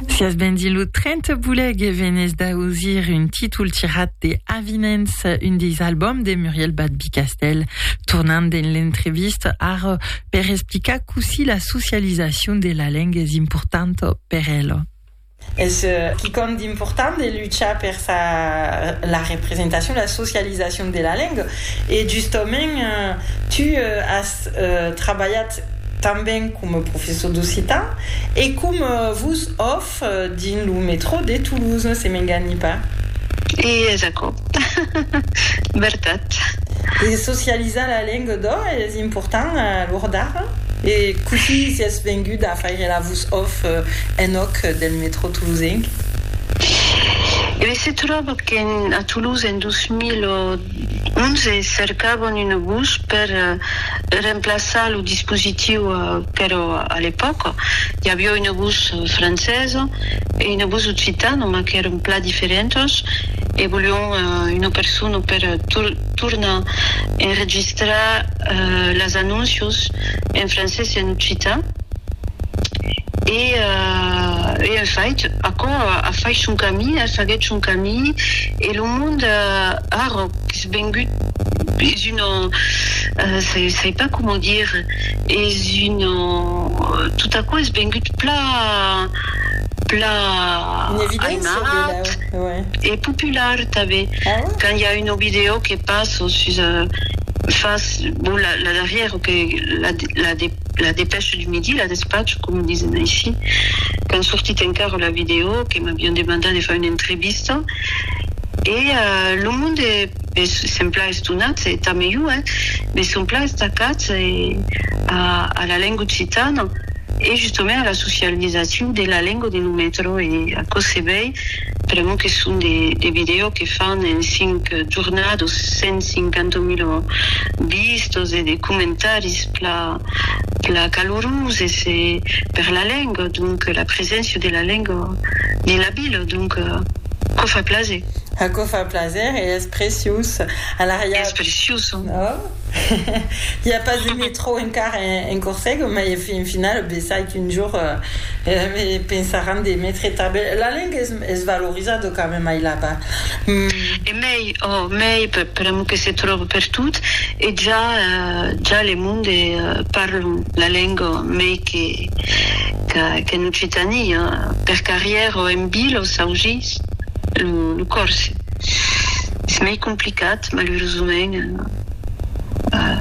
Si as ben dins lo tren te boleg e venes d'ausir un títol tirat de Avinents, un deis albòms de Muriel Badby-Castell, tornant dins l'entrevista ara per explicar cossí la socializacion de la lenga es importanta per ela. Es quicòm d'important de luchar per sa la representacion, la socializacion de la lenga e justament tu as trabalhat tanben coma professor d'occitan e coma vos òf dins lo metrò de Toulouse, se m'enganhi pas. E es aquò. Vertat. E socializar la lenga d'ò es important a l'ora d'ara? E cossí sies vengut a faire la vos òf en òc del metrò toulousenc? E ben se tròba qu'en a Toulouse en 2000 ò Onze cercavan un bus per remplaçar lo dispositiu, però a l'epòca i aviá un bus francés e un bus occitan, mas qu'èran plan diferentas e volián una persona per tornar enregistrar las anóncios en francés e en occitan. E en fait, aquò a fait son camin, faguèt son camin. E lo mond arròc es vengut, es una, sai pas coma dir, es una, tot aquò es vengut pla, pla aimat e popular tanben. Quand i a una vidèo que passo sus, fas, bon, la darrièra, la de. La Dépêche du Midi, La Despatch, com disen aicí, qu'an sortit encara la vidèo, que m'avián demandat de far una entrevista, e lo monde es se'n plan estonat, e tanben jo, eh, mes son plan estacats a la lenga occitana e justament a la socializacion de la lenga de lo metro, e aquò se vei pr'amor que son de vidèos que fan en 5 jornadas 150 mila vistas e de comentaris pla pla caloroses e per la lenga, donc la preséncia de la lenga dins la vila, donc quò fa plaser. Aquò fa plaser e es preciós. Alara ja. Es preciós. Hi a pas de metro encara en Corsega, mai en final, besai qu'un jour pensaràn de metre tanben. La lenga es valorizada quand même ai là-bas. E mei, oh, mei, per amu que se tròba pertot e ja, ja le monde parlan la lenga mei que qu'en Occitània, per carrièr o en vila o s'aujís lo còrse. Es mei complicat, malurosament.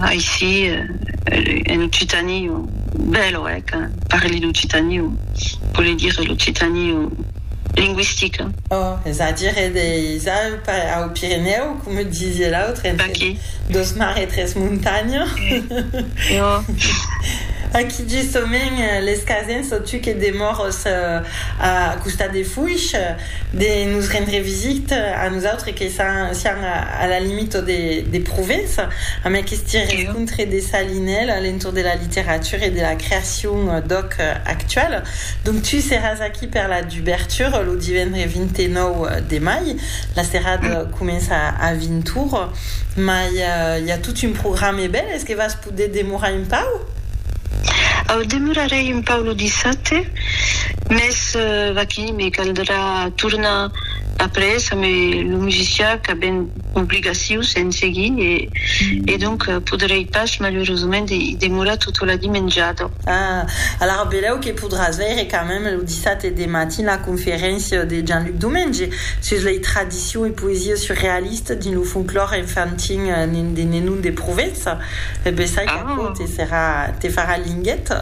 aicí en occitani o bèl o hèc parli d'occitani o vole dire l'occitani o lingüistica oh es a dire deis au pirinèu coma disie l'autre entre dos mar e tres montanha e o aquí justament les casens o tu que demòros a costat de fuish de nos rendre visit a nosautres que siam a la limita de Provença amb aqueste rencontre de Salinèl a l'entorn de la literatura e de la creacion d'òc actual. Donc tu seràs aquí per la dubertura lo divendre 29 de mai, la serada comença a 20 ora, mai i a tot un programe bèl, es que vas De demorar un pauc? Au, demorarèi un pauc lo dissabte, mès vaquí, me caldrà tornar après amé lo musicià qu'a ben obligacius en seguir e e donc podrèi pas malurosament i demorar tota la dimenjada. Ah, alara belèu que podràs veire quand même lo dissabte de matin la conferéncia de Jean-Luc Domenge sus lei tradicions Ficcion e poesia surrealista dins lo folclòr enfantin de Nenon de Provença. E bessai qu'aquò te serà, te farà linguet.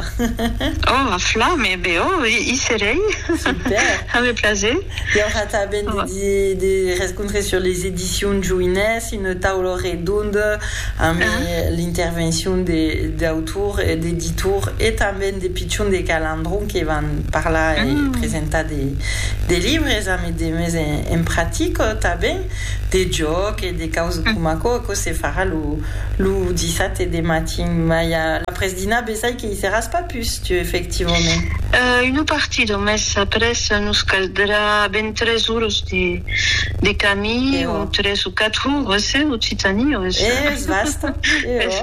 Oh, a flam! E be, oh, i serei. Super! Ave plaser. I aurà tanben de rescontres sur les Editions Joinès, una taula redonda amb l'intervencion d'autor e d'editor e tanben de pichons de Calandron que van parlar e presentar de libres. de mes en practic tanben de jòc e de causas coma aquò, aquò se farà lo dissabte de matin, mai a l'apresdinà besai que i seràs pas pus tu efectivament. Una partida mes après nos caldrà ben tres oras de camin o tres o quatre oras eh occitani o es vasta es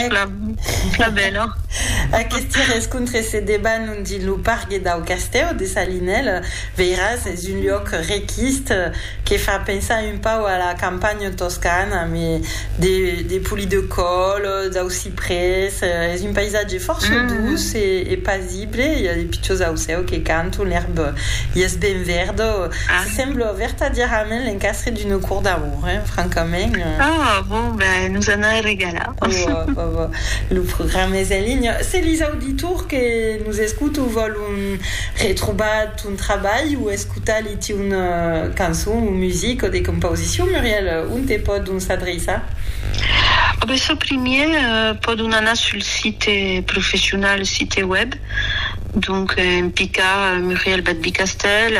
plan bèla. Aqueste rescontre se debanonge lo pargue dau castèu de Salinèla. Veiras, es un luòc requist que fa pensar un pauc a la campanha toscana, me de poli de còl, dau ciprès, es un paisatge fòrça duç e pasible, i a de pichons ausèu que canton, l'èrb i es ben verda, se sembla vertadièrament l'encastre d'una cort d'amour, eh, francament. Oh, bon, ben, nos an a regalar. Bon, bon, bon, lo programa es en linha. Se lis auditors que nos escutan vòlon. Pòdon retrobar ton trabalh o escotar li tiun cançon o music o de compausicion, Muriel, onte pòdon s'adreiçar? A ben çò primièr pòdon anar sul site professional, site web, donc en picar Muriel Badby Castèl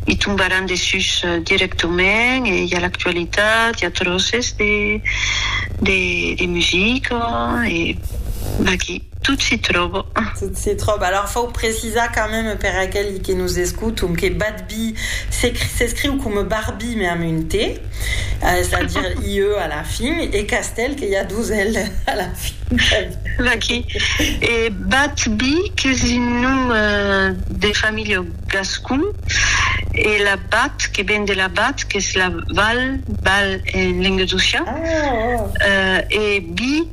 i tombaràn dessús dirèctament e i a l'actualitat, i a tròces de de de musica e vaqui. Tot s'i tròba. Tot s'i tròba. Alors fau precisar quand même per aqueli que nos escoton que Badby s'escriu coma Barby mais amb un T, c'est à dire IE à la fin, e Castèl que i a dos L à la fin. Vaquí. E Badby qu'es un nom de familha gascon e la Bat que ven de la Bat qu'es la Val, Val en lengadocian, e By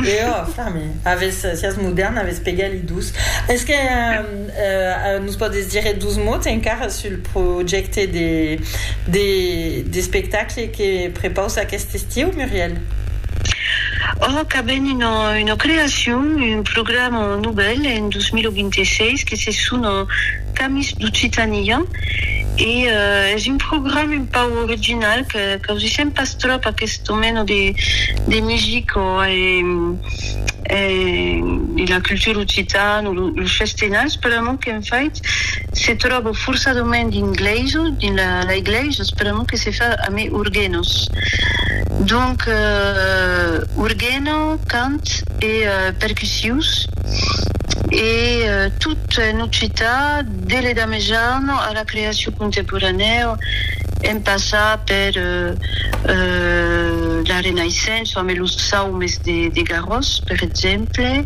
E ò, Fami, avès, siás modèrn, avès pegat li dus. Es que nos pòdes dire dus mots encara sul projècte de de d'espectacle que prepaus aquest estiu, Muriel? Ò, qu'avèm una una creacion, un programa novèl en 2026 que se sona Camins d'Occitània e es un programa un pauc original que qu'ausissèm pas tròp aquest domèni de de musica e de la cultura occitana los festenats per amor qu'en fait se tròba forçadament dins glèisa dins la la glèisa per amor que se fa a mai orguenos donc orguena cant e percussius e tot en occitan De l'Edat Mejana a la creacion contemporanèu, en passar per la Renaissença amb los saumes de Garòs, per exemple,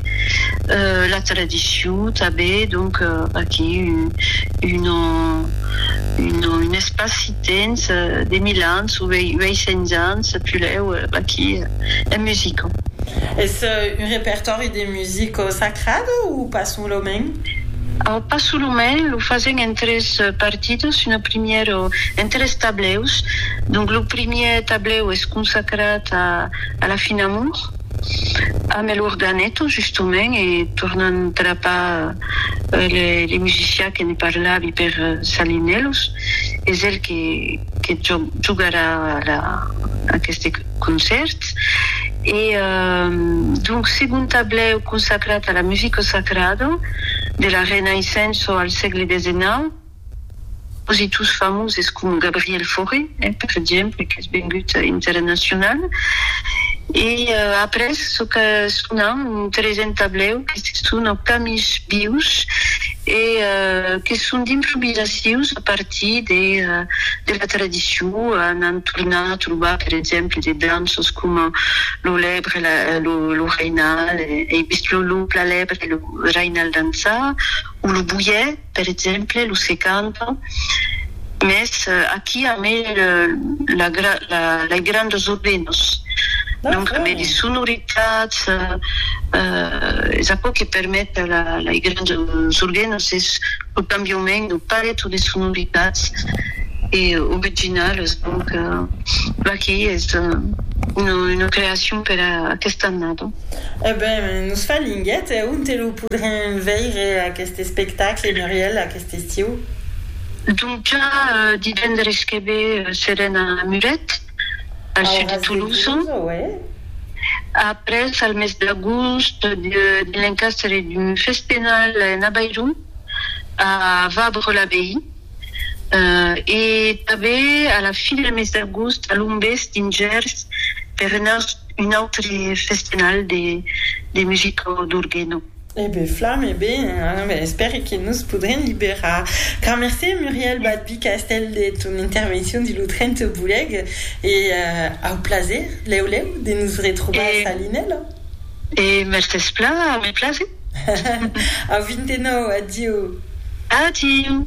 la tradicion tanben, donc aquí un espaci-temps de mil ans o 800 ans, pulèu aquí en musica. Es un repertòri de musica sacrada o pas solament? Pas solament, lo fasèm en tres partidos, una primièra en tres tablèus, donc lo primièr tablèu es consacrat a la fin amor amb el organeto justament e tornam trapar le musicià que ne parlavi per Salinellos, es el que jogarà aqueste. concèrts e donc segon tablèu consacrat a la musica sacrada de la Renaissença al sègle desenau, compositors famoses coma Gabriel Fauré, per exemple, qu'es vengut internacional e après çò que sonam un tresen tablèu que se sona Camins vius. e que son d'improvisacions a partir de de la tradicion, n'an tornat a trobar per exemple de danças coma lo lèbre la lo lo rainal ei vist lo lo pla lèbre lo rainal dançar o lo boièr per exemple lo se canta. Mès aquí a me lei grandes ordenos, donc a me lei sonoritats, es aquò que permet lei grandes ordenos es lo cambiament de paleto de sonoritats e originales, donc aquí es una creacion per aquesta annada. E ben nos fa linguet, e ont lo podrem veire aquest espectacle, Muriel? D'estiu. Donca, divendres que ve serem a Muret, al sud de Tolosa. Après, al mes d'agost, dins l'encastre d'un fest penal en Avairon, a Fabre-l'Abbaye. E tanben a la fin del mes d'agost a Lombés, dins Gèrs, per un autre fest penal de musica d'orgue. E ben flam, e ben espère que nos podrem liberar. Car mercé Muriel Badby Castell de ton intervencion de lo 30 Bolèg e au plaser, lèu lèu, de nos retrobar a Salinèla. E mès despla, me plase. Au 29, adieu. Adieu.